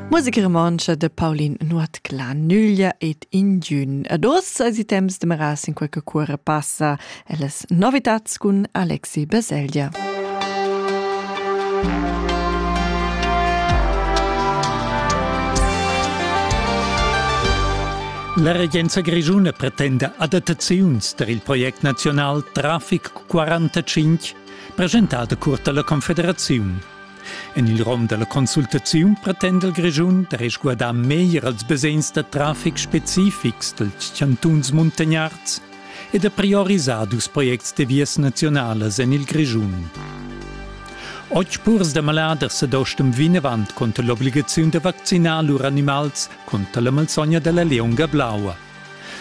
Musik romancha de Paulin Nuot la Nüglia et Indiun. Ad os als temps de Meras in qualche cuore passaelles novitats cun Alexi Baselgia. La regenza grischuna pretenda adattaziuns per il project nazional Traffic 45 presentada curta la Confederaziun. En il rom da la consultaziun pretenda il Grischun da resguardar meglier els basegns da traffic specifics dals chantuns muntagnards e da priorisar dus projects de vias naziunalas en il Grischun. Oggi purs da maladers ad ostem vinavant conter l'obligaziun da vaccinar lur animals conter la malsogna della leonga blaua.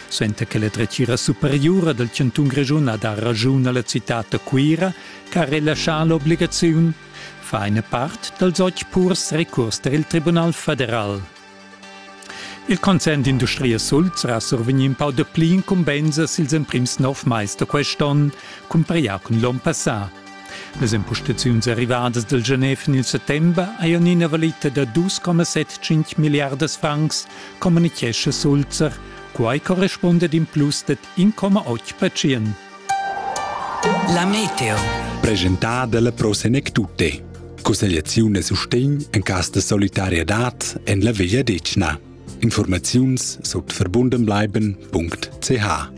Suenter che la dretgira superiura dal chantun Grischun ha dà raschun a la citad da Cuira che ha relaschà l'obligaziun, fa ina part dals otg purs recurs tar il Tribunal federal. Il concern d'industria Sulz ha survegnì in pau dapli incumbensas ils emprims nov mais da quest'onn cumpareglià cun l'onn passà. Las impostaziuns arrivadas dal Genève en il settember hajan ina valita da 2,75 milliardas francs, communitgescha Sulzer. Quai correspunda in plus dad 1,8 percent. La meteo. Presentada dalla Pro Senectute. Cussegliaziun e sustegn en cas de solidarietad en la Veglia Decna. Informaziuns sut verbundenbleiben.ch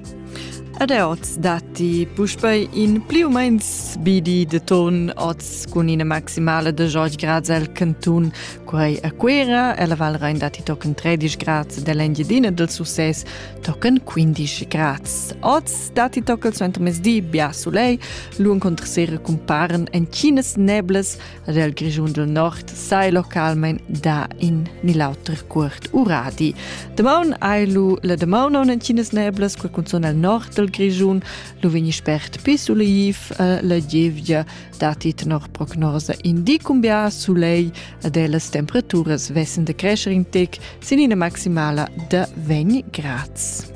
Ed er oz datti puspei in pli u meins bidi de ton oz cun ina maximale de George Grads el cantun. Quei a Cuera, ella Val Rein datti tochen 13 grads dell'Engiedina del Success tochen 15 grads. Oz datti tochen suenter mesdi bia solei, l'un contra sera cumparen en chinas neblas, Del Grischun del Nord sai localmein da in ni l'auter cuort uradi. Demaun hai lu la demaun on en Cines neblas quel cunzon el nord del Grischun, lu vegni spert pi sulaiv eh, la gievgia dati tenor prognosa indi cumbia sulei ed e las temperaturas vessen de crescer in tec sin ina maximala de 20 grads.